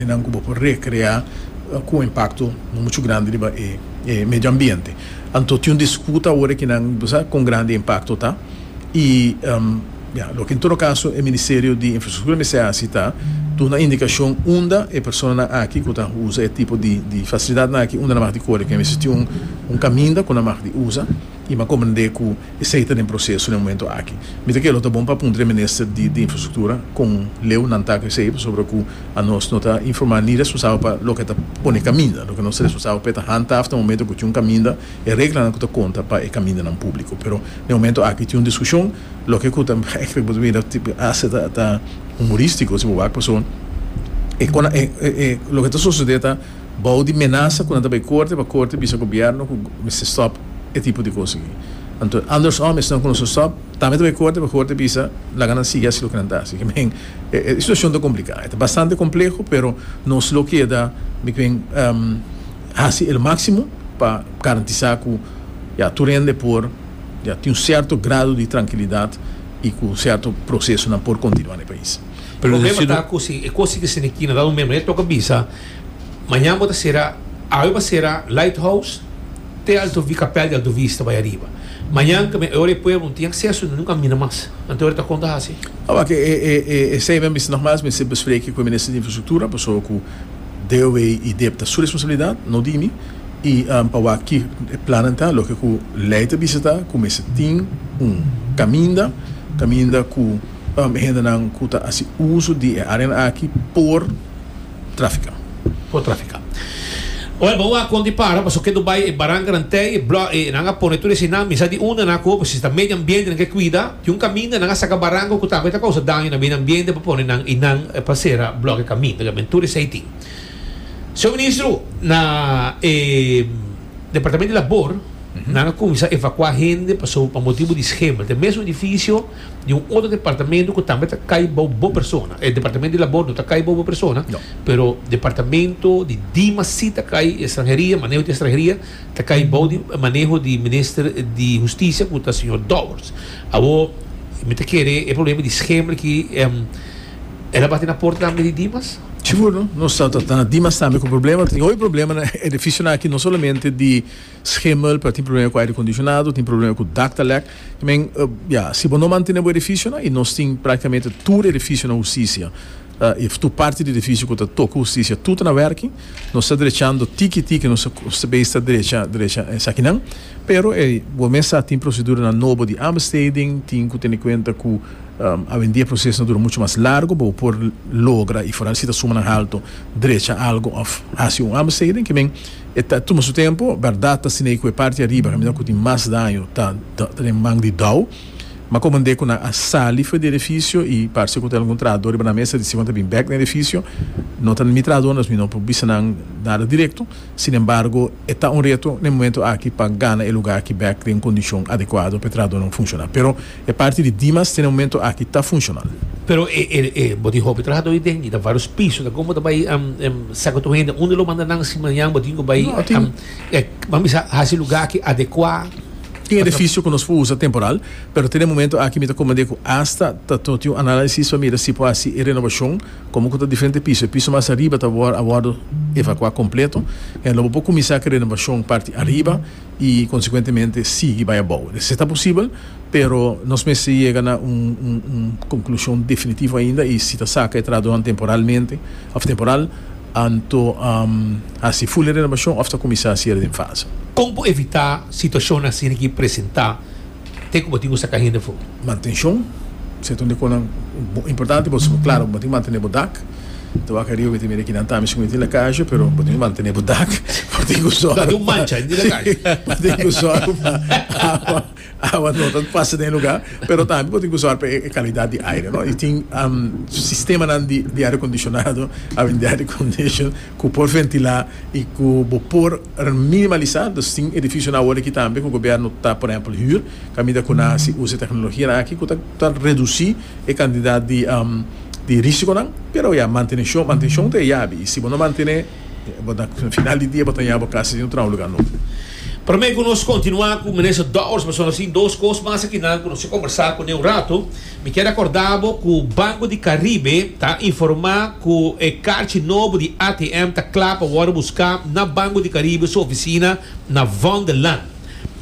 e nan ku bo por rekreá ku un impakto muchu grandi riba e medio ambiente. Anto tin un disputa ora ki nan bo sa kon grandi e impakto ta i bia loke en todo kaso e Ministerio di Infrastruktura mester hasi ta duna indikashon unda e personanan aki ku ta usa e tipo di fasilidatnan aki unda nan mag di kore ku nan mester tin un kaminda ku nan mag di usa. I mi a comprende cu esey ta den proceso den momento aki. Mi ta kere lo ta bon pa puntra e Minister di di Infrastructura con leu nan ta cu esey pasobra cu anos no ta informa ni responsabel pa loke ta pone caminda. Loke nos ta responsabel pa e ta handhaaf den momento cu tin un caminda, e reglanan cu ta conta pa e camindanan publico. Pero den momento aki tin un discusion loke cu ta gek riba bo mira hace ta humoristico si bo wak paso e con e loke ta sucede ta. Bou di menasa cu nan ta bay corte pa corte bisa gobierno cu mester stop e tipo di cos aki. Anto Anders Om y esnan cu nos ta stop tambe ta bay corte pa corte bisa laga nan sigui haci loke nan ta haci. Meken e situacion ta complica. E ta bastante compleho pero nos lo keda meken haci el maximo pa garantisa cu ya tur hende por ya tin un certo grado di trankilidad y cu un certo procesonan por continua na e pais. Problema ta cu si e cosi ki Sene Kina dado meme, e toca bisa, mañan bo ta cera, awe bo cera Lighthouse te Alto Vi, Capel di Alto Vista bay ariba. Mañan ta e ora e pueblo no tin acceso y no camina mas. Anto e ora ta con ta haci? Awak e esey mi a bisa nogmas mester bespreke cu e Minister di Infrastructura pasobra cu DOW y dep ta su responsabilidad, no di mi, y pa wak ki e plannan ta. Loke cu ley ta bisa ta cu mester tin un caminda, caminda cu. Hendenan ku ta hasi uso di e áreanan aki por trafika. Por trafika. Oe bo wak kon di para paso kendo bai e barankanan tei e blòk e nan a pone tur esei nan misa di unda nan a koba si ta medio ambiente nan ke kuida di un kaminda nan a saka baranku ku tambe ta kousa daño na medio ambiente pa pone nan i nan pa sera blòk e kaminda oiga bien tur esei tin Señor Ministro na e Departamento di Labor nan a kuminsá evakuá hende paso pa motibu di schema ta e mesun edifisio di un otro departamento cu tambe ta cay bao bo persona. E departamento di labor no ta cay bao bo persona, No. pero departamento di DIMA si ta cay, y extranheria, maneho di extranheria, ta cay bao di maneho di minister di Husticia cu ta señor Dowers. Awor, mi ta kere e problema di Schemel aki, em, el a bati na porta tambe di DIMAS? Sigur no. Nos ta tratá Dimas tambe cu probleman. Ta tin hopi probleman na edificionan aki, no solamente di. Schimel pa tin problema ku aire kondisionado, tin problema ku dak ta lèk. I men, ya, si bo no mantene bo edifisionan, i nos tin praktikamente tur edifisionan hustisia, i tur parti di edifisio ku ta toka hustisia, tur ta na wèrking. Nos ta drechando tiki tiki, nos ta bei sta drecha drecha esakinan. Pero e, bo mes sa, tin proseduranan nobo di aanbesteding, tin ku tene kuenta ku awendia e proseso ta dura muchu mas largu pa bo por logra, i foral si ta sumanan haltu, drecha algu òf hasi un aanbesteding. Kimen E ta tuma su tempu. Bèrdat ta asina i ku e parti ariba kaminda ku tin mas daño ta den man di Dow. Ma komand'é ku nan a sali for di edifisio i parse ku tin algun trahadó riba nan mesa di si kon ta bin bèk na edifisio. No ta mi trahadónan, mi no por bisa nan nada direkto. Sin embargo, e ta un reto na e momentu aki pa gana e lugá aki bèk den un kondishon adekuado pa e trahadónan funshoná. Pero. E parti di Dimas te na momento aki ta funshonal. Pero e e e bo tin hopi trahadó i den i ta varios piso ta kon bo ta bai saka tur hende unda lo manda nan si mañan bo tin ku bai ban bisa hasi lugá aki adekuá. Tin edefisio ku nos por usa temporal pero te na momento aki mi ta komand'é ku asta ta no tin un análisis pa mira si por hasi e renobashon komo ku ta diferente piso e piso mas ariba ta a wòrdu evakuá kompleto i a lo bo por kuminsá ku e renobashon parti ariba i konsekuentemente sigui bai abou. Esei ta posibel, pero nos mester yega na un un konklushon definitivo ainda, i si ta saka e trahadonan temporalmente òf temporal, anto hasi full e renobashon òf ta kuminsá sier den fase. Kon por evitá situashonnan asina ki presentá? Ke ku bo tin ku saka hende fo'i? Mantenshon, si e ta un de konan importante boso bo klaro bo tin mantené bo dak. Ta wak ariba mi ta mira e kinan ta ami si ku mi tin lakashi pero bo tin ku mantené bo dak, bo tin ku sòru pa bo tin ku sòru pa awa awa no ta pasa den e lugá pero tambe bo tin ku sòru pa e kalidat di aire no i tin sistemanan di aire kondishonado a bin di aire kondishon ku por ventilá i ku bo por minimalisá, dus tin edifisionan awor aki tambe ku gobièrnu ta por ehèmpel hür, kaminda ku nan a si usa e teknologianan aki ku ta redusí e kantidat di rísikonan, pero ya, manteneshon, mantenshon ta e yabi i si bo no mantené bo ta final di dia bo ta ña bo kas djuntu na un lugá nobo. Promé ku nos kontinuá ku Minister Dowers, bo a sona sin dos kos mas aki nan ku nos a kombersá kuné un ratu, Mi kier acorda bo cu Banco di Caribe ta informa cu e carchi nobo di ATM ta cla pa worde busca na Banco di Caribe su oficina na Van de Lan.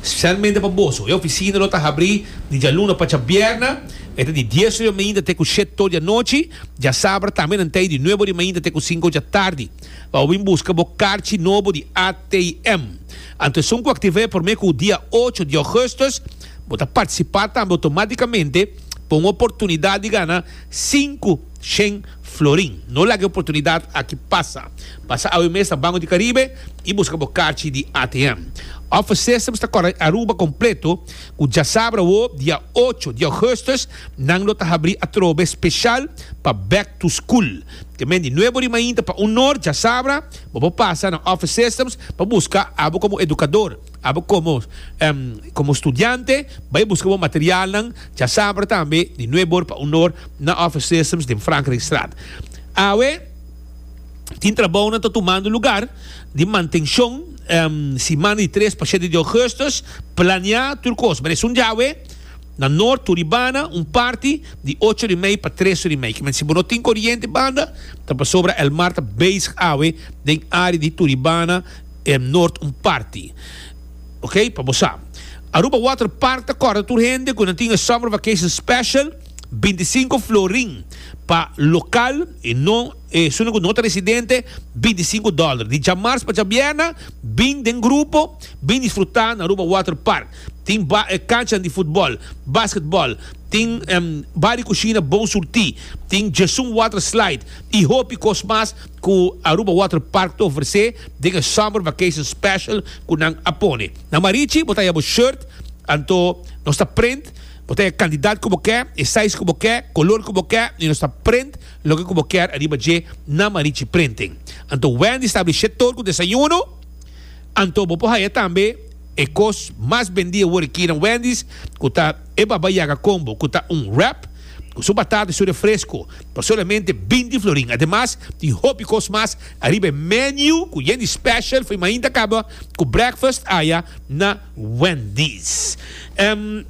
Specialmente pa boso, e oficina lo ta habri di djaluna pa djabierna, mete di dies ori mainta te cu shet tor di anochi, djasabra tambe nan ta e di nuebe ori mainta te cu cinco djatardi, pa bo bin busca bo carchi nobo di ATM. Anto esun cu activa e prome cu dia ocho di augustus, Bo ta partisipá tambe otomátikamente pa un oportunidat di gana sinku shen florin. No laga e oportunidat aki pasa. Pasa awe mes na Banco di Caribe i buska bo karchi di ATM. Òf esesa bo sta kòrda e Aruba kompleto, ku djasabra awó dia ocho di ògùstùs nan lo ta habrí atrobe speshal pa Back to School. Kemen di nuevo rimainta pa un nor djasabra bo por pasa na òf esesa pa buska abo komo edukador. Abo komo komo studiante bai buska bo materialnan dja sabra tambe di nueve or pa un or na Office Systems den Frankrijkstraat. Awe tin trabounan ta tumando lugar di mantenshon siman di tres pa shete di ougustus plania tur kos pero esun dja awe na nort turibana un parti di ocho ori mei pa tres ori mei kimen si bo no tin koriente banda ta pasobra el mar ta bezig awe den area di turibana E Nort un parti. Ok, pa bo sa. Aruba Water Park ta kòrda tur hende ku nan tin e Summer Vacation Special, binti i sinku florin pa lokal i no e esunnan ku no ta residente, binti i sinku dòler. Di djamars pa djabièrna, bin den grupo, bin disfrutá na Aruba Water Park. Tin ba e kanchanan di futbòl, basketbòl, tin ba di kushina bon surtí, tin Jesun Water Slide i hopi kos mas. cu Aruba Water Park ta ofrece den e Summer Vacation Special cu nan a pone. Na Marichi bo ta haya bo shirt, anto nos ta print, bo ta haya cantidad cu bo ke, e size cu bo ke, color cu bo ke y nos ta print loke cu bo kier ariba dje na Marichi Printing. Anto Wendy sta abrishe tur cu desayuno, anto bo por haya tambe e cos mas bendi awor aki na Wendy's cu ta e Baba Yaga Combo cu ta un wrap cu su batata y su refresco. pa solamente binti florin. Ademas tin hopi kos mas ariba e menu ku yen di special for e mainta kaba ku breakfast aya na Wendy's. Em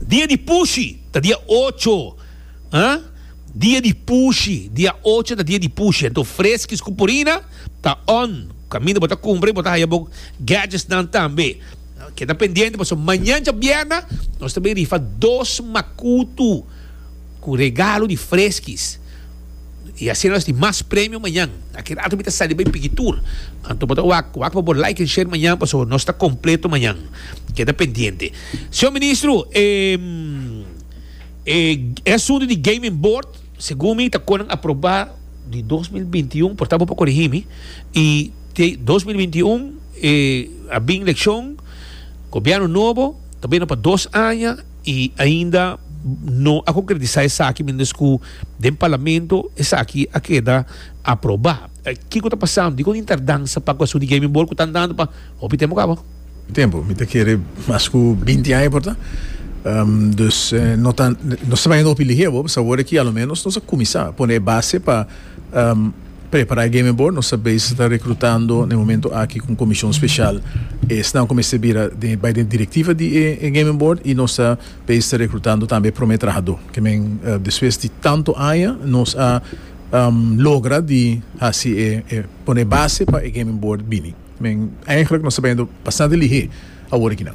dia di pushi ta dia ocho ha dia di pushi dia ocho ta dia di pushi anto freskis ku purina ta on kaminda bo ta kumpra i bo ta haya bo gadgets nan tambe keda pendiente paso mañancha bierna nos ta bin rifa dos makutu. Cu regalo di freskis. Y asina nos tin mas premio mañan. Aki rato mi ta sali bay piki tur. Anto bo ta wak, wak pa bo like en share mañan pasobra nos ta completo mañan. Keda pendiente. Señor Ministro, e asunto di gaming board segun mi ta konan aproba di dos mil binti i un, por tanto bo por corigi mi, y te dos mil binti i un a bin leccion, gobierno nobo ta bini pa dos aña. I ainda no a konkretisá esaki mientes ku den parlamento esaki a keda aprobá. Kiko ta pasando? Dikon tin tardansa pa ku asuntu di gaming ball ku tantu anu pa hopi tempu kaba? Tempu? Mi ta kere mas ku binti aña por ta. Dus no ta, no ta bai hopi lihé bo, pasobra ki aloménos nos a kuminsá pone e base pa. Prepará e Gaming Board, nos ta bes ta rekrutando na e momentu aki ku un komishon speshal. Esnan ku mester bira bai den e direktiva di e Gaming Board i nos ta bes ta rekrutando tambe e promé trahadó. Ke men despues di tantu aña nos a logra di hasi e pone e base pa e Gaming Board bini. Men eigenlijk nos ta bendo bastante lihé awor aki nan.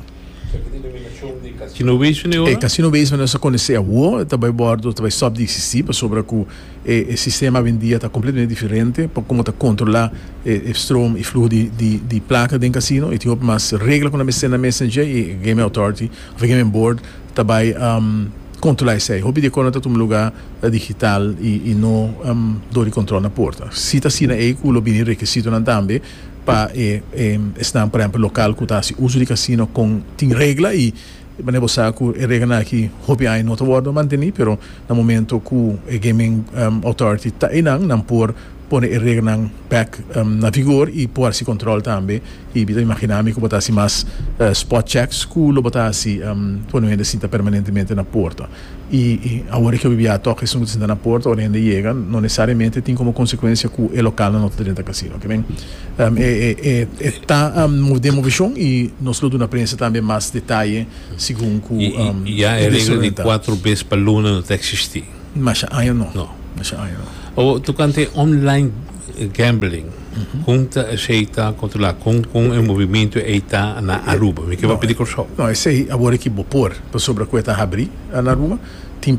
Esaki ta denominashon di Casino Basement di ora? E Casino Basement nos ta konesé awor ta bai bòrdu, ta bai stòp di eksistí pasobra ku e e sistema awendia ta kompletamente diferente pa komo ta kontrolá e e strom i fluho di di di plaka den kasino. E tin hopi mas regla ku nan mester nan mester dje i e gaming authority òf e gaming board ta bai. Controla esey. Hopi di e cono ta tuma luga digital y no door di control na porta. Si ta asina ey cu lo bini requisitonan tambe pa e esnan por ehempel local cu ta haci uso di casino con tin regla y mane bo sa cu e reglanan aki hopi aña no ta wordo manteni pero na momento cu e gaming authority ta eynan nan por pone e regelnan bek na vigor y por haci control tambe y mi ta imagina mi cu bo ta haci mas spot checks cu lo bo ta haci pone hende sinta permanentemente na porta y awor e kbia a toca esun cu ta sinta na porta ora hende yega no necesariamente tin como consecuencia cu e localnan no ta drenta casino kimen e ta mo demo vision y nos lo duna prensa tambe mas detaye segun cu e desorienta. Masha aña no. No. Masha aña no. Awor, tokante online gambling, kon ta esei ta kontrolá? Kon kon e movimiento ei ta na Aruba? Mi ke papia di Kòrsou. No, esei awor aki bo por, pasobra ku e ta habrí na Aruba. Tin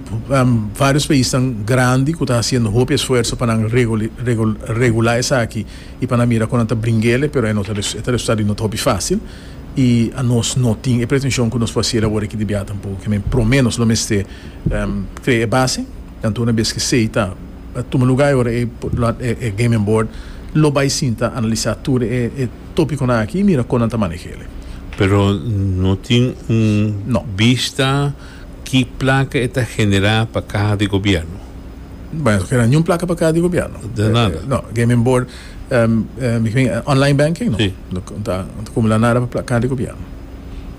vários paisnan grandi ku ta hasiendo hopi esfuerso pa nan regulá esaki i pa nan mira kon nan ta bringel e, pero e resultado di no ta hopi fásil. I anos no tin e pretenshon ku nos por hasiel awor aki di biaha tampoco. Ke men promé nos lo mester Krea e base, kantu una bes ki sei ta tuma lugá i ora e gaming board lo bai sinta analisá tur e tópikonan aki i mira kon nan ta maneh'é. Pero no tin un bista ki plaka e ta generá pa kaha di gobièrnu? Bai, nos no keda niun plaka pa kaha di gobièrnu. Nada? No, gaming board. Um, um, ik meen, online banking, no? Sí. No, no ta, no ta acumula nada pa placa di gobierno.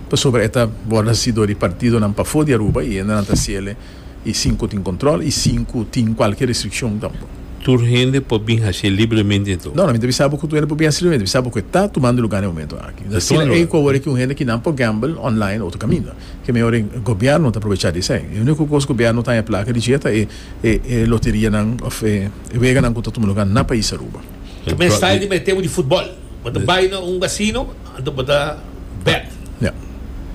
Pa sobre eta borda si do di partido nan pa fo di Aruba y enda nan ta ciele y cinco tin control y cinco tin cualkier restriccion tampo. Tur hende por bin haci libremente ento? No, no, mi ta bisa bo cu tur hende por bin haci libremente. Mi bisa bo cu e ta tumando lugar den e momento aki. Mi ta Tumando sila ey lugar. cu awor eki un hende kinan por gamble online otro caminda. Ke mihor e gobierno ta aprovecha di esey. E unico cos gobierno ta haña placa di dje ta e e loterianan of e weganan ku ta tuma lugá na pais Aruba. Ku mes style di mete bo di futbòl. Bo ta bai na un gasino, anto bo ta bet. Ya.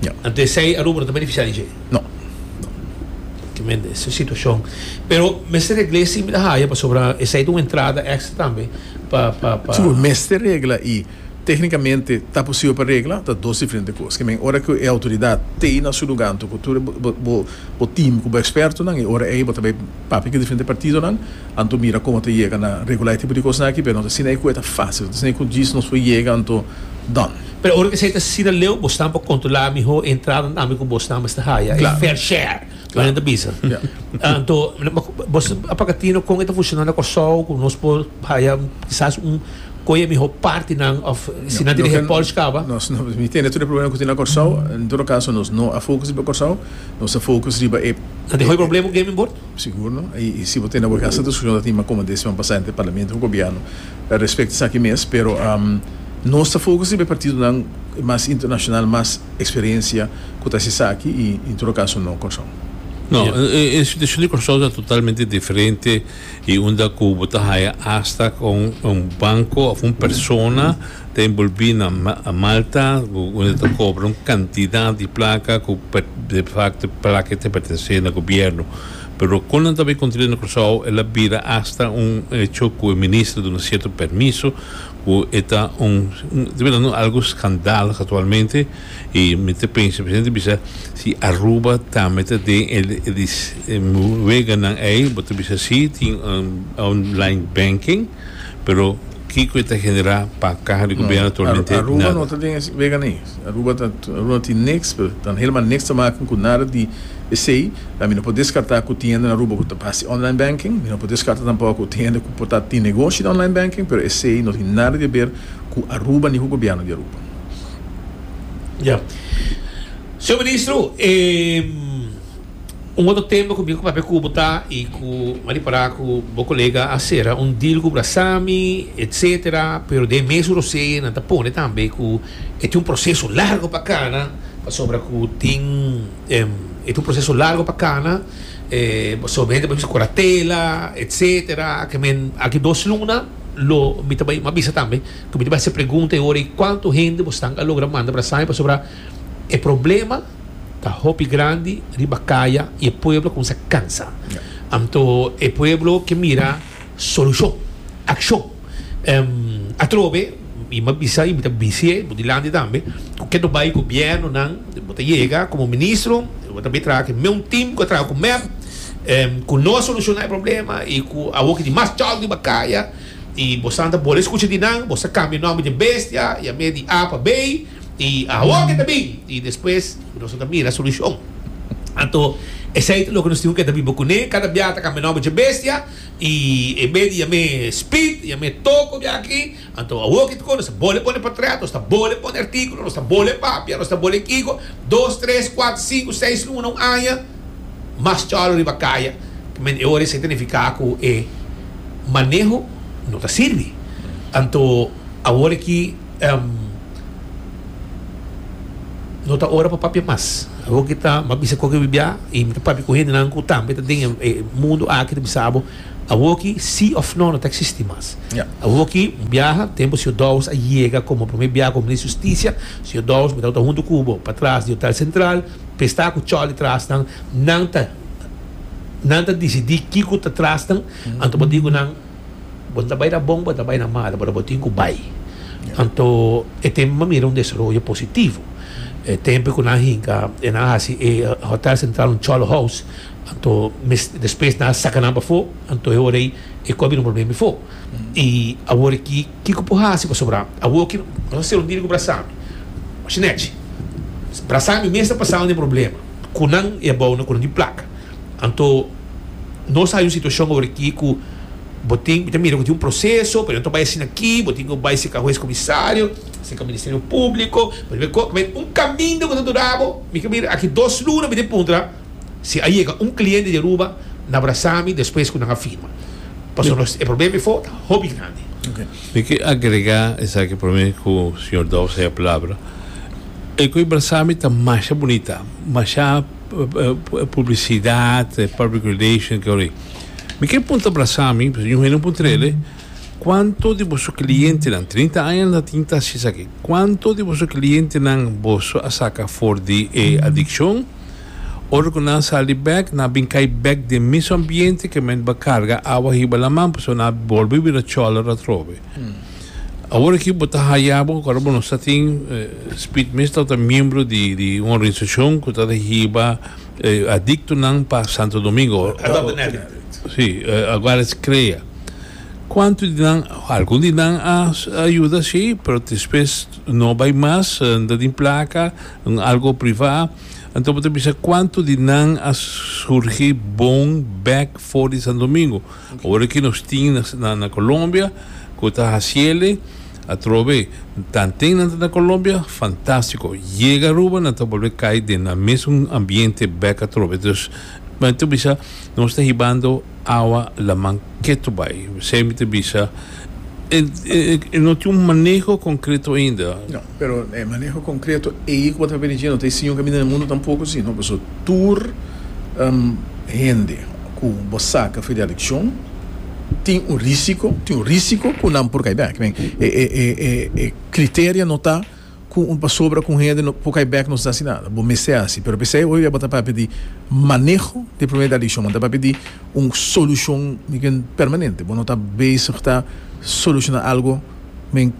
Ya. Anto esei Aruba no ta benefisiá di dje? No. No. Pratikamenti es e situashon. Pero mester regl'é e siña mi ta haya pasobra esei ta un entrada èkstra tambe pa, pa, pa. Sigur, mester regla i. Téknikamente ta posibel pa regla, ta dos diferente kos. Ke men, ora ku e outoridat ta ei na su lugá anto ku tur bo tim ku bo ekspertonan, i ora ei bo ta bai papia ku e diferente partidonan, anto mira komo ta yega na regulá e tipo di kosnan aki, pero no ta asina ei ku e ta fásil, no ta asina ei ku djis nos por yega anto dòn. Pero ora esei ta sira leu, bosnan por kontrolá mihó e entrada ami ku bosnan mester haya e fair share, ku nan ta bisa. Anto, bos a papia tino kon e ta fushona na Kòrsou, ku nos por haya kisas un. Koe e miho partinan of si nan tin e Porsche kaba? Nos no mi tende tur e problema ku tin na Kòrsou. En todo kaso nos no a fokus riba Kòrsou. Nos ta fokus riba e. Nan dehó e problema ku Gaming Board? Sigur no. I si bo tende bo gasta diskushon ta tin mas kòmò den siman pasá entre Parlamento ku Gobièrnu respecto esaki mes. Pero nos ta fokus riba e partidonan mas internashonal, mas eksperensia ku ta hasi esaki i en todo kaso no Kòrsou. No, e situashon di Kòrsou ta totalmente diferente. y unda cu bo ta haya hasta con un banco of un persona ta envolvi na Malta cu unda ta cobra un cantidad di placa cu defacto placa ta pertence na gobierno pero con nan ta bay construi na Curaçao el a bira hasta un hecho cu e minister duna cierto permiso cu e ta un ta bira un algo scandal actualmente. Y mi ta pensa, presidente bisa, si Aruba tambe ta den e weganan ey, bo ta bisa si, tin online banking, pero kico e ta genera pa caha di gobierno actualmente? Nada. No, Aruba no ta den e weganan ey. Aruba ta, Aruba no tin niks, pero ta helemaal niks te maken cu nada di esey. A mi no por descarta cu tin hende na Aruba cu ta haci online banking. Mi no por descarta tampoco cu tin hende cu por ta tin negoshi di online banking, pero esey no tin nada di haber cu Aruba ni cu gobierno di Aruba. Ya. Señor Ministro, e un otro tema cu mi cu papia cubo ta y cu m'a di para cu bo colega a cera un deal cu Brasami, etcetera, pero den e mes su rosee nan ta pone tambe cu e tin un proceso largo pa cana pasobra cu tin e tin un proceso largo pa cana pasobra bo hende ta bisa curatela, etcetera, aki dos luna lo mi ta bay m'a bisa tambe. Ku mi ta base pregunta e ora ei kuantu hende bo stan a logra manda para Saimi pasobra e problema ta hopi grandi riba kaya i e pueblo a kuminsá a kansa. Anto e pueblo ke mira solushon, akshon. Atrobe mi a bisa i mi ta bis'é bo dilanti tambe ku kendo bai gobièrnunan bo ta yega komo ministro bo ta bin traha ku e mesun tim ku a traha ku mep ku no a solushona e problema i ku awo ke tin mas chòk riba kaya. I bo san ta bole skucha di nan, bo sa kambia nòmber dje bestia, i a mea di A pa Bey, i awor ke ta bin, i despues nos lo ta mira solushon. Anto esei ta loke nos tin ku ke ta biba kuné, kada biaha ta kambia nòmber dje bestia, i e be di yam'é Speed, yam'é Toko biaha aki, anto awor ke ta kon, nos ta bole pone potret, nos ta bole pone artikulo, nos ta bole papia, nos ta bole kico, dos, tres, kuater, sinku, seis luna, un aña. mas chòlò riba kaya, men e ora esei ta nifiká ku e maneho no ta sirbi. Anto awor aki no ta ora pa papia mas. Bo ke ta m'a bisa koke bibiá i mi ta papia ku hendenan ku tambe ta den e mundu aki ta bisa bo awor aki sí òf nò no ta eksistí mas. Awor aki un biaha tempu señor Dowes a yega komo promé biaha komo Minister Hustisia, señor Dowes mi tabata huntu ku bo patras di Hotel Sentral, Pe sta ku choli trasnan, nan ta nan ta disidí kiko ta trasnan, anto bo tin ku nan, Bo ta bai na bon, bo ta bai na malu, pero bo tin ku bai. Anto e tempu mi a mira un desaroyo positivo. E tempu ku nan hinka, e nan a hasi e Hotel Central un cholo house, anto mes despues nan a saka nan pafó, anto e ora ei e kobi un problema befo. I awor aki. Kiko por hasi pasobra awor ki nos a ser un dirigo brasami? Shinechi, Brasami mes ta pasando den problema cu nan y a bao na cunan di placa. Anto nos a hay un situacion awor aki cu bo tin, mi ta mira cu tin un proceso, pero yo no ta bai asina aki, bo tin cu bai cerca huez comisario, cerca Ministerio Publico, pa tin bay cor, un caminda cu ta durabo, mi ta mira aki dos luna mi ta puntra. Si a yega un cliente di Aruba na brasa mi despues cu nan a firma. Pasobra nos e problema e fogo ta hopi grandi. Mi ki agrega esaki prome cu señor Dobbs haya palabra. E cu e brasa mi ta masha bunita, masha publicidad, public relation ke horai. Mi kier punta brasa mi, pasobra un hende no por trele, cuanto di boso clientenan, trinta aña nan ta tin tashi esaki, cuanto di boso clientenan boso a saca for di e adiccion? Ora cu nan sali bek, nan a bin cay bek den mismo ambiente que men tabata carga awa hiba laman, pasobra nan a bolbe bira cholera atrobe. Awor aki bo ta haya bo, acorda bo nos ta tin, Speed Mista ta miembro di un organisacion cu ta rehiba adictonan pa Santo Domingo, Adopting Addicts, si, agual es crea. Cuantu di nan, algun di nan a yuda si, pero despues no bay mas, nan ta tin placa. un algo privá, anto bo ta bisa kuantu di nan a surgi bon bek for di Santo Domingo. Ora ki nos tin nan na Colombia ku ta hasiele atrobe tanten nan ta na Colombia fantástiko. Yega Aruba nan ta bolbe kai den nan mesun ambiente bek atrobe. Dus nan ta bisa nos ta hibando. Awa laman ketu bai. Esei mi ta bisa. E no tin un maneho konkreto ainda. No, pero e maneho konkreto ei ku bo ta papia di djina. No ta e siño kaminda den mundu tampoko si no. Paso tur hende ku bo saka for di elekshon tin un risiko, tin un risiko ku nan por kai bek. E kriteria no ta. Cu un pasobra cu un hende no por cay bek nos ta haci nada. Bo mester haci. Pero pesey hoy día bo ta papia di maneho di e problemita di shon. Bo ta papia di un solucion mi ken permanente. Bo no ta bezig ta soluciona algo men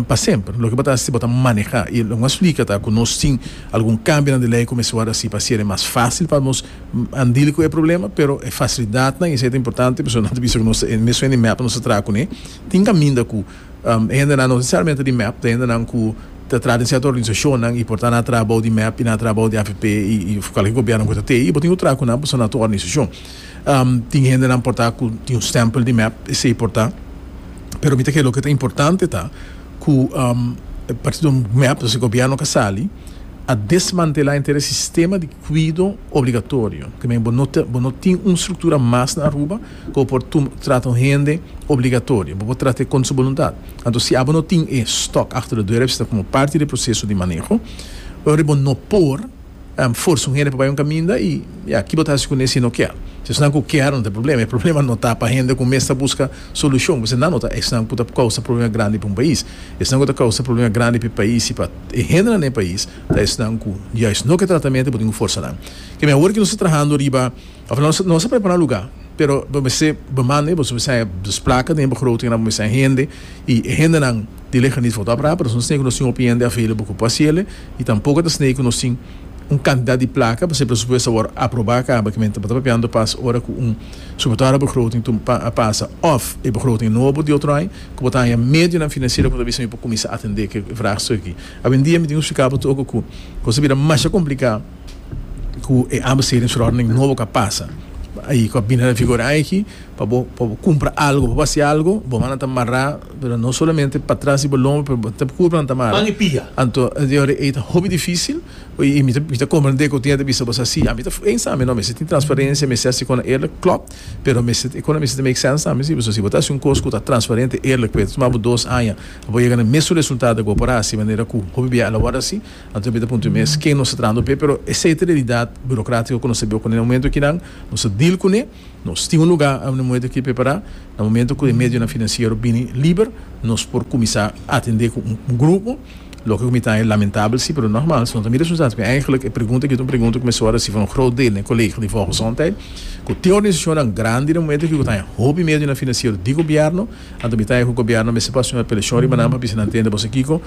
pa semper. Loke bo ta haci bo ta maneha. Y loke mas flica ta cu nos tin algun cambinan di ley cu mester word haci pa haci ere mas facil pa nos handil cu e problema. Pero e facilidadnan y esey ta importante pasobra nan ta bisa cu nos ta e mesun hende mep nos ta traha cune tin caminda cu. E hendenan no nesesariamente di mep, ta hendenan ku ta traha den sierto organisashonnan i por ta na traha bou di mep i na traha bou di afp i kualke gobièrnu ku ta tei i bo tin ku traha ku nan pasobra nan ta un organisashon. Tin hendenan por ta ku tin un stèmpel di mep, esei por ta, pero mi ta kere loke ta importante ta ku partido mep, entonces gobièrnu ka sali a desmantelá entera e sistema di kuido obligatorio, te men bo no tin un struktura mas na Aruba. Bo por trata un hende obligatorio. Bo por trat'é contra su boluntad. Anto si abo no tin e stock achter de deur, esta como parti de proceso di maneho. Oir bo no por forsa un hende pa bai un caminda y ya, ki bo ta haci cun'é si e no kier? Si esnan cu kier no ta e problema. E problema no ta pa hende cu mes ta busca solucion, pues esnan no ta esnan cu ta causa problema grandi pa un pais. Esnan cu ta causa problema grandi p'e pais y pa e hendenan den e pais ta esnan cu juist no ke tratamento y bo tin cu forsa nan. Keme awor cu nos ta trahando riba. Of nos nos a prepara un luga pero bo mester bo manda eboso mester haya dos placa den bo grote kende bo mester haya hende y e hendenan di lejanía for ta apra pero nos tin nos tin hopi hende available cu por haci ele y tampoco ta esne cu nos tin un cantidad di placa pasobra e presupuesto a wor aproba caba kimente bo ta papiando pas ora cu un sobre todo ora bo grote tu pa a pasa of e bo grote nobo di otro aña cu bo ta haya medionan financiero cu ta bisa mi por cuminsa atende ki e vragstuk aki awendia mi tin splicabo tu oko cu cosa a bira masha complica. ku e abasteridingverordening nobo ka pasa i ku a bini na vigor aki pa bo pa bo kumpra algu pa bo hasi algu bo mannan ta mará pero no solamente pa tras di bo lomba pero bo ta puru mannan ta mara anto e ta hopi difisil i mi ta mi ta komprende ku tin yanta bisa bo sa si ami ta ey sa mi no mester tin transparencia mester hasi konan eerlik klopt pero mester e konan mester ta make sense tambe si pasobra si bo ta hasi un kos ku ta transparente eerlik ku a ta tuma bo dos aña pa bo yega na e mesun resultado ku bo por a hasi manera ku hopi bia a la wòrdu a hasi Anto mi ta puntra mi mes ken nos ta trahando p'e, pero e sete realidat burokratiko ku nos ta biba kuné na momentu akinan, nos ta deal kuné, nos tin un lugá na momentu aki prepará, na momentu ku e medionan finansiero bini liber, nos por kuminsá atendé ku un grupo, loke ku mi ta e lamentabel sí, pero nògmaals no ta mi responsabilidat, pasobra eigentlik e pregunta aki ta un pregunta ku mester a resibi un grot deel na e kolegio di Volksgezondheid, ku tin organisashonnan grandi na momentu aki ku ta haña hopi medionan finansiero di gobièrnu, anto mi ta haña ku gobièrnu mester pa asumí un apelashon riba nan pa bisa nan tende boso kiko.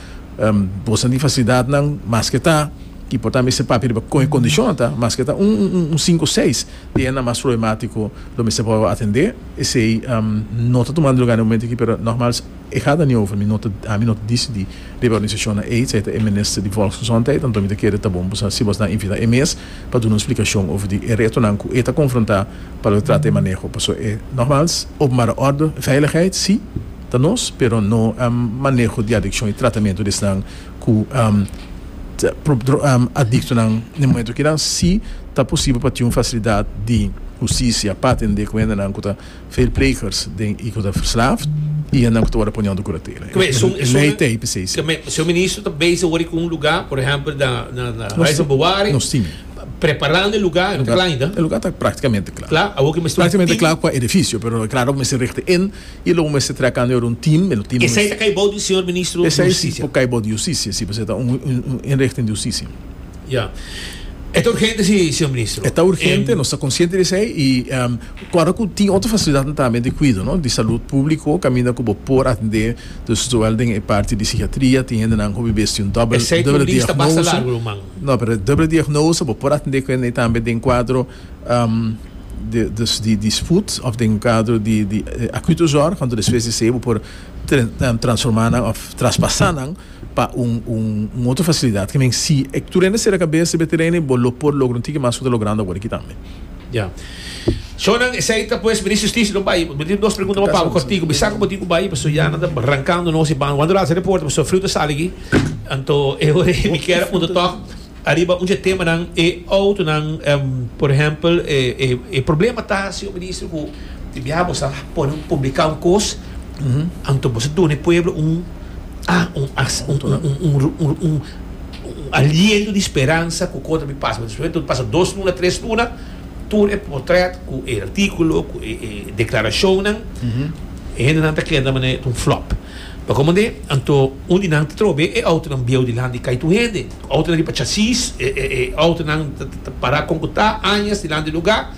Bo sa di fasilidadnan maske ta ki por ta mester papia riba kon e kondishonnan ta, maske ta un un sinku seis di hennan mas problematiko lo mester por atendé. Esei no ta tumando lugá den e momento aki pero nogmals e gata ni over mi no ta ami no ta disidí riba e organisashonnan ei esei ta e minister di volksgezondheid anto mi ta kere ta bon si bo nan invitá e mes pa duna un splikashon over di e retonan ku e ta konfrontá pa lo trata e maneho paso e nogmals openbare orde, veiligheid si. Ta nos, pero no maneho di adikshon i tratamentu di esnan ku ta adiktonan. Na e momentu kinan si ta posibel pa tin un fasilidat di hustisia pa atendé ku hendenan ku ta veelplegers i ku ta verslaafd i hendenan ku ta wòrdu ponió under kuratela. E lei ta hei p'esei si. Señor Ministro ta bezig awor ku un lugá, por ehèmpel na Huis van Bewaring. Nos tin. Preparando e lugá, e lugá ta praktikamente kla. Kla, awor ke mester un tim. Praktikamente kla ku e edifisio, pero e kla awor mester richting. E lo bo mester traka anto e word un team, e lo team. Esei ta kai bou di señor ministro di hustisia? Esei por kai bou di hustisia, si, pasobra e ta un inrichting di hustisia. Ya. E ta urgente si, señor ministro. E ta urgente, nos ta konsiente di esei i ora ku tin otro fasilidatnan tambe di kuido, no, di salud públiko kaminda ku bo por atendé, dus zowel den e parti di sikiatria, tin hendenan ku a bibé sin dòbel diagnose. Esei por lista basta largu ruman. No, pero e dòbel diagnose bo por atendé ku hende tambe den kuadro. Dus di disput of den kadro di akuto zòrg, kantu despues di esei bo por transformá nan òf traspasá nan pa un otro fasilidat ki men si e tur hende sera kabes riba e teren ei bo lo por logra un tiki mas ku ta logrando awor aki tambe. Ya. So nan esei ta pues Minister Justicia lo bai bo tin dos pregunta bo pau kòrtiku bisa ku bo tin ku bai paso ya nan ta rankando nos di banda wanda lo haci reporte paso Friu ta sali aki anto e hora ei mi kier a punta tòg. Ariba un dje temanan e outonan, por ehempel, e problema ta, señor Minister, cu di biaha bo sa pone, publica un cos, anto bo sa duna e pueblo un aliento di speransa cu cosa ta bin pasa. Despues cu pasa dos luna, tres luna, tur e portret cu e articulo, cu e declaracionnan, e hendenan ta keda manera ta un flop. Pasobra kende, anto un di nan ta trobe e outonan bieu dilanti, cai tur hende. Outonan riba chasis, e outonan ta pará kon ku ta, añas dilanti di lugá.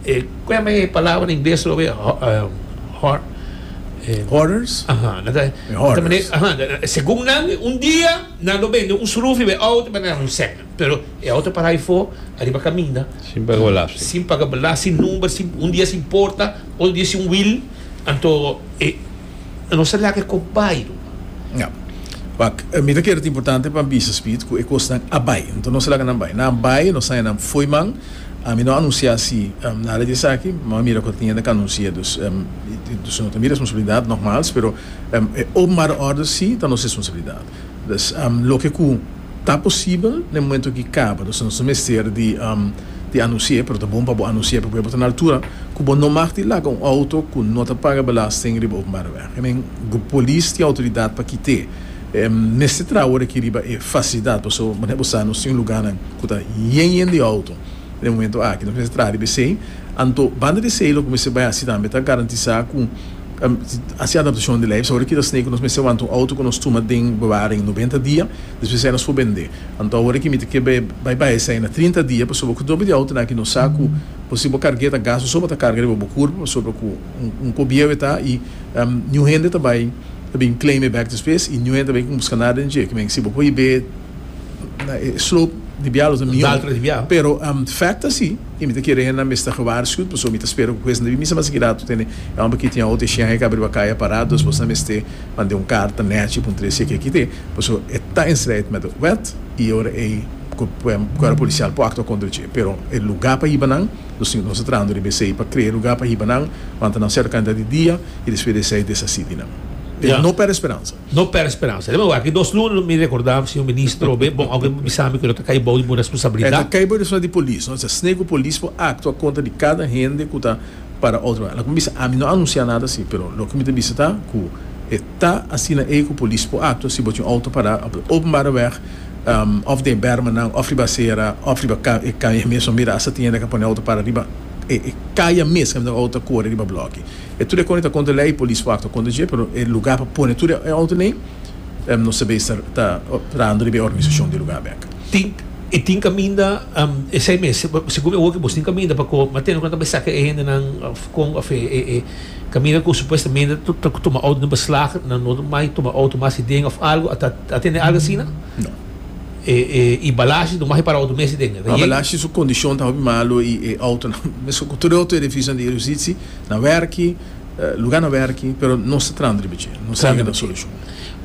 E, ku yama e palabra na ingles tur awe? Hor, e. Hoarders? Aha, nan ta, E hoarders. Aha, segun nan un dia nan lo bende un srufi be outo pa nan ronsek nan. Pero e outo pará befo ariba kaminda. Sin paga belasting. Sin paga belasting, number sin, un dia sin porta, otro dia sin wil, anto e. E no sa lak e kop bai lo. Ya. Wak, mi ta kere ta importante pa bisa Speed ku e kosnan a bai. Anto no sa lak nan bai. Nan bai, nos saña nan fo'i man. Mi no a anunsiá si nada di esaki. Bo a mira ku tin yende ku a anunsi'é. Dus, dus no ta mi responsabilidat, nògmals, pero e openbare òrder si ta nos responsabilidat. Pues, loke ku ta posibel na e momentu aki kaba. Nos no ta mester di anunsi'é, pero ta bon pa bo anunsi'é pasobra bo ta na altura ku bo no mag di laga un outo ku no ta paga belasting riba openbare wèg. I mean, polis tin outoridat pa kit'é. Mester traha ora aki riba e fasilidat paso manera bo sa nos tin lugánan ku ta yen yen di outo na e momentu aki. Nos mester traha riba esei. Anto, banda di esei loke bo mester bai hasi tambe ta garantisá ku Hasi adaptashon di lei. Awor e kita snei ku nos mester wanta un outo ku nos tuma den bewaring noventa dia, despues esei nos por bendé. Anto awor e kimiti ke bai bai esei na trinta dia pasobra ku doble di outonan aki nos sa ku por si bo karg'é ta gastu so pa ta karga riba bo kurpa pasobra ku un kobieu e ta i niun hende ta bai ta bin claim e bèk despues i niun hende ta bai buska nada den dje. Kimin si bo por hib'é na e slope di bia lo ta mió pero fact ta si. I mi ta kere hende nan mester gewaarschuwd, pasobra mi ta spera ku kuesten ta bin misa mas aki ratu tene e homber aki tin a ote shen hek abriba kaya pará, dus bosta mester mande un karta nèchi puntre si e ke kite, pasobra e ta in strijd met e wet i e ora ei ku kuerpo polisial por aktua kontra dje. Pero e lugá pa hiba nan, nos tin konsá trahando riba esei pa krea e lugá pa hiba nan, wanta nan serka kantidat di dia i despues di esei deshasí di nan. Pero no pèrdè speransa. No pèrdè speransa. Te mawar aki dos luna mi rekordá señor ministro, be bon awke bo bisa mi ku lo ta kai bou di bo responsabilidat. E ta kai bou di responsabilidat di polis, no? Esei sne ku polis por aktua kontra di kada hende ku ta para otro manga. Loke mi bisa, ami no a anunsiá nada asi, pero loke mi ta bisa ta ku e ta asina ei ku polis por aktua si bo tin un outo pará op e openbare wèg, òf den e bèrmanan, òf riba asera, òf riba e kaya mes. Bo mira as atiende a ka pone outo para riba e kaya mes, kaya outo ta kore riba blòki. E tur e kòne ta konta lei polis wak ta konta dje pero e lugá pa pone tur e outo nei no sa bes ta rando riba e organisashon di lugá bek. Tin e tin kaminda esei mes segun mi oki bos tin kaminda pa kò matene ku nan ta bai saka e hendenan òf kon òf e kaminda ku supuestamente ta tuma outo den beslag nan no mai tuma outo mas di den òf algu a tende algu asina? No. I balashi no masi para outo mes di den? Balashi su kondishon ta hopi malu i e outonan mesun ku tur e outo e revisa di e yusitsi. Na werki, luga na werki, pero nos ta trahando riba dje, nos ta yega na solucion.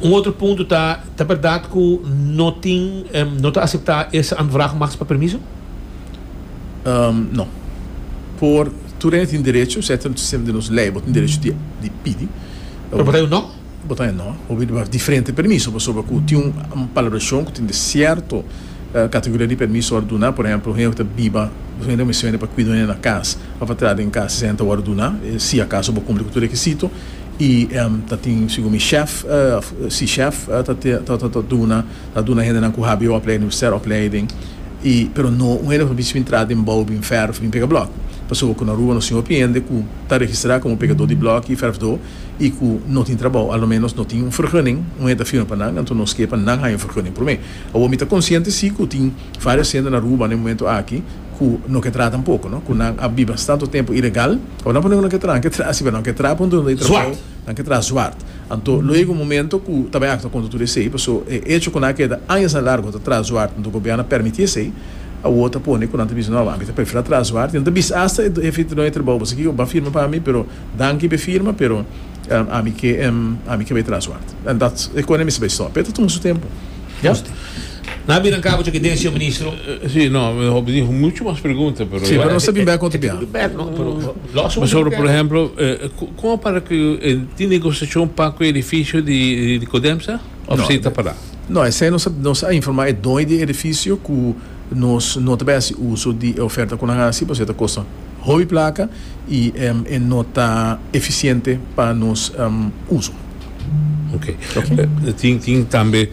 Un otro punto ta, ta berdad cu no tin, no ta acepta es aanvraag mas pa permiso? No. Por tur ene tin derecho, setter sistema di nos ley, bo tin derecho di pidi. Pero bo ta di un no? Bo ta enò, bo pidi pa diferente permiso pasobra ku tin un palabrashon ku tin di sierto kategoria di permiso wòrdu duná. Por ehèmpel, un hende ku ta biba, un hende ku mester hende pa kuida un hende na kas, pa pa tra den kas esei hende ta wòrdu duná si akaso bo kumpli ku tur rekisito i ta tin segun mi shèf òf si shèf ta duna ta duna hendenan ku hbo opleiding universitair opleiding i pero no un hende ku ta bisti bin tra den bou bin vèrf bin pega blòk pasobra ku na Aruba nos tin hopi hende ku ta registrá komo pegadó di blòk i vèrfdó. i ku no tin trabou, alo ménos no tin un fergunning, un hende ta firma pa nan, anto nos ke pa nan haña un fergunning promé. Awor mi ta konsiente si ku tin vários hende na Aruba na e momentu aki ku no ke trata un poko, no, ku nan a biba tantu tempu ilegal, awor nan por diga ku nan ke traha, nan ke traha si, pero nan ke traha punto dor di trabou, nan ke traha zwart. Anto luego un momento ku ta bai aktua kontra tur esei, paso e echo ku nan a keda añas na largu ta traha zwart, anto gobièrnu a pèrmití esei, awor ta pone ku nan ta bisa, no, ami ta preferi traha zwart, i nan ta bisa asta e jefe di trabou, pasobra kiko? Ban firma pa mi, pero Danki pe firma pero ami ke ami ke bai tras ward en dat e kone mi sta bai stop pero e ta tuma su tempo ya. Nan bira cabo cu den señor ministro. Si no mi hopi tin mucho mas pregunta pero. Si pero nos ta bin bek otro bia. Pasobra por ejemplo con a para cu e tin negociacion pa cu e edificio di Codemsa of si ta para. No esei nos a informa e doy di edificio cu. Nos no ta bay haci uso di e oferta cu nan haci pasobra e ta costa hopi placa y e no ta eficiente pa nos uso. Ok. Tin, tin tambe,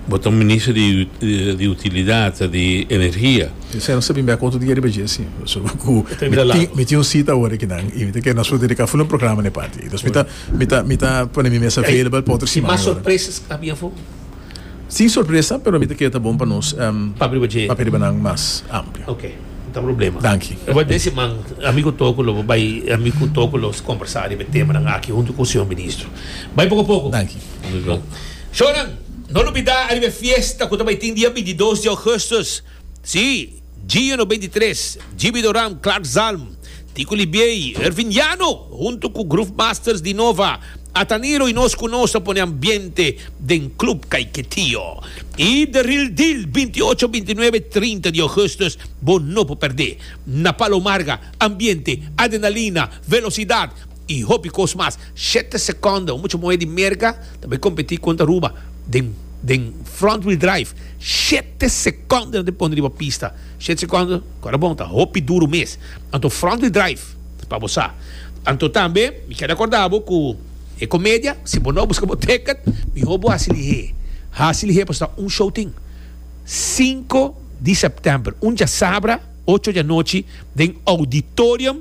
bo ta un minister di, di utilidad, di energia. Esei no sa bin bay cu otro dia riba dje, si. Pasobra cu mi tin, mi tin un cita awor aki nan y mi ta kere nos por dedica full un programa na e parti aki. Entonces mi ta, mi ta, mi ta pone mi mes available pa otro siman. Mas sorpresas cu ta habi afo? Sin sorpresa, pero mi ta kere ta bon pa nos papia riba nan mas amplio. Ok, no ta problema. Danki. E por desi man, ami ku Toko lo bai, ami ku Toko lo kombersá riba e temanan aki huntu ku Señor Ministro. Bai poko poko. Danki. Shornan, no lo bida ariba e fiesta ku ta bai tin dia bintidos di ougùstus. Sí, Gio Noventa i Tres, Jibi Doram, Clark Zalm, Tico Libiey, Ervin Llano, hunto cu Groove Masters di Nova, Atanilo y nos cu nos ta pone ambiente den Club Caiquetío. Y The Real Deal, binti y ocho, binti y nuebe y trinta di Augustus, bo no por perdé. Na Palo Marga, ambiente, adrenalina, velocidad, y hopi cos mas. Shete seconda, un mucha moe di Merca ta bay competi contra Aruba den den front wheel drive, shete seconda ta pone riba pista, shete seconda cu ta bon ta hopi duro mes, anto front wheel drive pa bo sa, anto tambe mi quier recorda bo cu e comedia si bo no busca bo ticket miho bo haci lihe, haci lihe pasobra ta un show tin cinco di September un diasabra ocho di anochi den auditorium.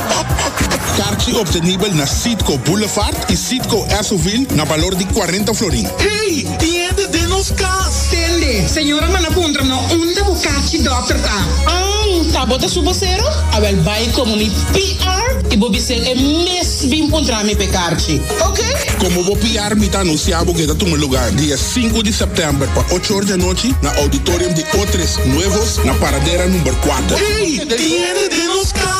Karchi obtenibel na Citgo Boulevard y Citgo Esso-ville na balor di cuarenta florin. Hey! Tin hende den nos cas! Tende! Señora manda puntra no unda bo karchi dokter ta. Ang! Ta bo ta su bosero? Awel bay como mi PR y bo bisel e mes bin puntra mi p'e karchi. Ok! Como bo PR mi ta anuncia bo ke ta tuma lugar di e sinku di september pa ocho or di anochi na auditorium di Otres Nuevos na Paradera number cuater. Hey! Tin hende den nos cas!